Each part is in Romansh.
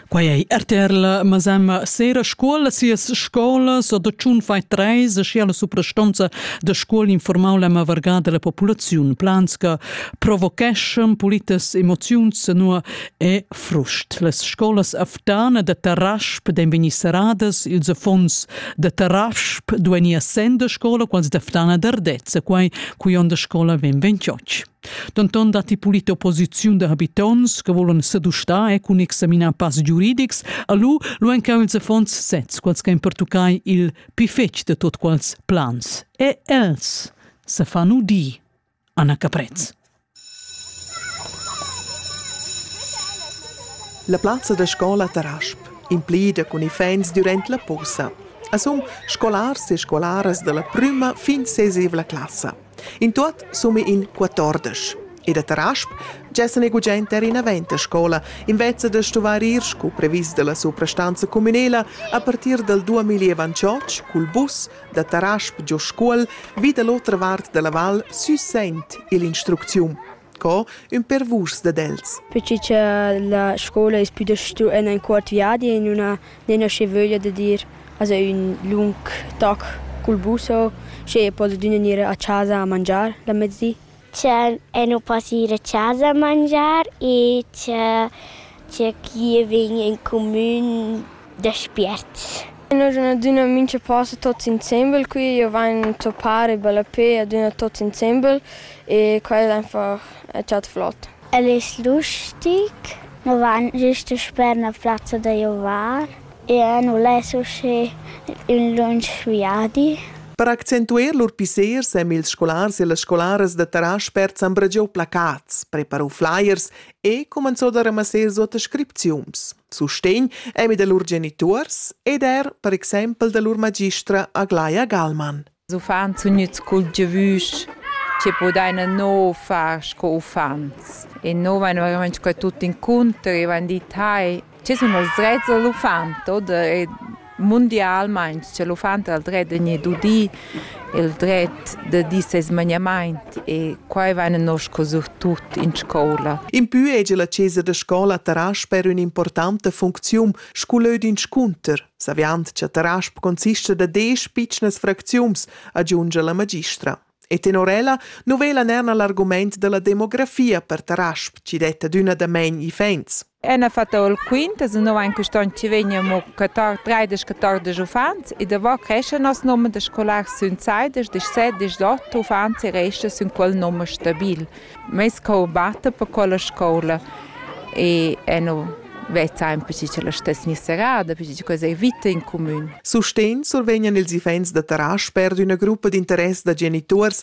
Quai ei RTR la masema sera scola sias scolas da tschun fai treis e sia la suprastonza da scola informau la varga della populaziun plans che provocheschan politas emoziuns nur e frust. Las scolas aftana da Tarasp den vegni seradas ils affons da Tarasp dueni essendo scola quals d'aftana d'Ardezza quai cui onda scola ven 28. Denton datti pulit opposiziun da habitonts che volan sedustar e cun examinar pass giuridics, alu lu encan ils affons sezs quels che ein pertuccai il pi fetg de tot quals plans. E els se fanno di. Anna Caprez. La plazza da scola Tarasp, implida cun iffaints durant la posa. A sum scolars e scolaras dalla prüma fin sesevla classa. In tuot summa in quatordesch. E da Tarasp gessa ne gugent er inavent a scola, invezza da stuvar ir scu previs dalla suprastanza cumünela a partir dal 2028 cul bus da Tarasp giò Scuol vi da l'otra vart dalla val sü Sent ill'instrucziun. Co ün per vus dad els? Perche cha la scoula es pü da stu en ün cuort viadi e nun ha nemnasche vöglia da dir esa ün lung toc cul bus o sche poded'üna gnir a chasa a mangiar la mezdi. Cha e nu po gnir a chasa a mangiar e cha Tgei che vegn en cumin da spiert. Noi sun adüna mincha post tuots insembel qui, io vain zuppar e ballapè adüna tuots insembel e quai es einfach chat flot. El es lustig, nu vain gist sper 'na plazza da giovar e nu less usché ün lunsch viadi. Per accentuer lur pissers èn ils scolars e las scolaras da Tarasch spert s'han bragià placats, preparà flyers e cumenzò da ramassar suota scripziuns, sustegn emi da lur genituors ed er per exempel da lur magistra Aglaia Galman. Uffants sun gnüts cultivüs che podaina no far sco uffants e no vain verament sco tuot incontri, vain dit hai Che sun els drets da l'uffant oder e mundialmaing cha l'uffant ha il dret da gnir dudi, il dret da dir seis magnamaint e quai vaina nosco surtut in scoula. Impü hegia la chesa da scoula Tarasper ün'importanta funcziun scu lö d'inscunter, saviand cha Tarasp consista da desch pitschnas fracziuns, agiungia la magistra. E tenor ella nu vela ner na l'argumaint da la demografia per Tarasp chi detta adüna damain iffaints. Ena fatta ol quinta, se no ein quist onn ci vegnimo catar treidesch catordesch uffants e davò cresce nos nomer da scolars sün seidesch, dschsset, dschsot uffants e resta sün quel nomer stabil. Meis cour batta per quella scoula e e nu vezzain perche cha la stess'gna serrada, perche cha quella es vita in cumün. Sustegn survegnan ils iffaints da Tarasch per d'üna gruppa d'interess da genituors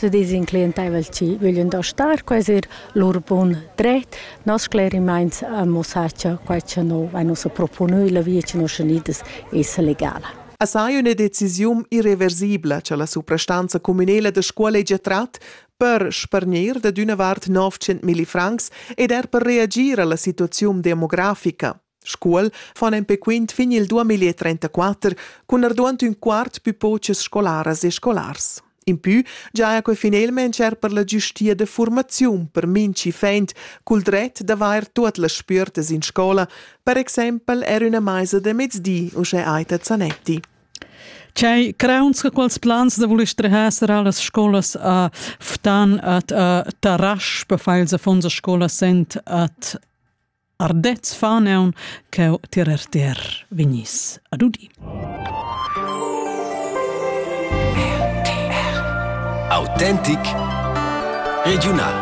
Tü dis in clientaivel chi vöglian da star qua es eir lur bun dret. Nos sclerimaints amo sa cha quai cha no vain ussa proponü illa via cha nos senidas esa legala. Assai üna decisiun irreversibla cha la suprastanza cumünela da Scualegia trat per spargnir dad üna vart 900 milli francs ed er per reagir a la situaziun demografica. Scuol fan empè quint fin il 2034 cun arduant ün quart pü pochas scolaras e scolars. Impü giaja que finelmaing er per la giustia da furmaziun per minchi fent cul dret d'avair tuot las spüertas in scola, per exaimpel er üna maisa da mezdi, uschè Aita Zanetti. C'hai crauns che quels plans da voler strehar sarà las scolas a Ftan at a Tarasch per far ils affonds a scola sent at Ardez faneun ch'eu tirer ter vegniss ad udir. RTR Autentic Regiunal